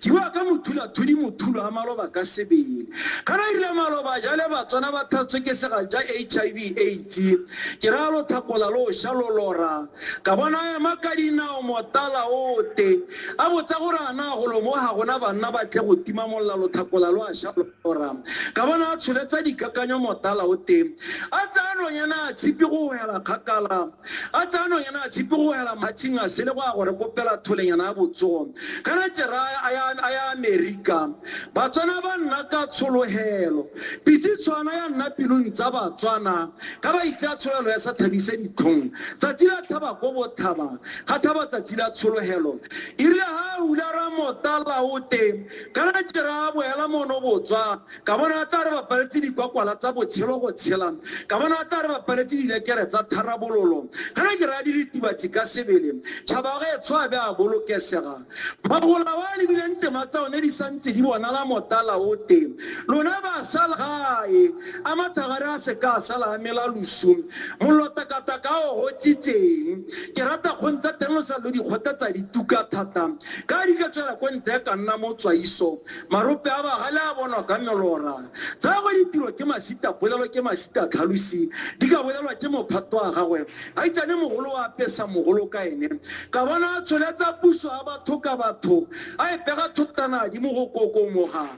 Jiwa ka mothula thudi mothulo a maloba ka sebele. Ka na irile maloba jale batswana ba thatswe ke sega ja HIV AIDS. Ke ra lo thapola lo sha lo lora. Ka bona ema ka dinao motala ote. A botsa gore a na go lo mo ga gona banna ba tle go tima molla lo thapola lo a sha lo. Oram. Ka bona a tsholetsa dikakanyo motala o teng. A tsaya nonyana a tshipi go wela kgakala. A tsaya nonyana a tshipi go wela matshing a sele go ya gore kopela tholenyana ya botsogo. Kana Jeraya a ya a ya Amerika. Batswana ba nna ka tshologelo. Pitse tshwana ya nna pilong tsa Batswana. Ka ba itse a tshologelo ya sa thabise ditlhong. Tsatsi la thaba ko bothaba. Ga thaba tsatsi la tshologelo. Irile ha a hula ra motala o teng. Ka la jera boela mono botswa, ka bona a tla re bapaletse dikwakwala tsa botshelo go tshela, ka bona a tla re bapaletse dilekere tsa tharabololo. Ka la jera diritibatsi ka sebele, tšhaba ga etsho a be a bolokesega. Magola wa lebileng tema tsa one di santse di bonala motala o te. Lona ba sala gae, a mathagare a se ka a sala a mela losu. Mollo takataka o gotsitseng. Ke rata kgong tsa teng lo sa lo di kgotetsa dituka thata. Ka di ka tswela kwa ntle ka nna mo tswaiso, marope a bagale a bonwa ka melora. Tsa gwe ditiro ke masita polelo ke masita tlhalosi, di ka bolelwa ke mophato wa gagwe. A itsane mogolo wa apesa mogolo ka ene. Ka bona a tsholetsa puso ya batho ka batho, a e pega thotana di mo go kokomoga.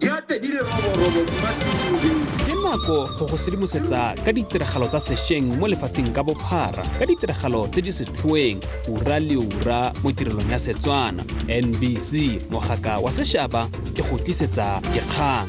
Yate di le roborobo di masimoleng. ke nako go go sedimosetsa ka ditiragalo tsa sešweng mo lefatsheng ka bophara ka ditiragalo tse di setlhoeng ura le ura mo tirelong ya setswana nbc mogaka wa sešaba ke go tlisetsa dikgang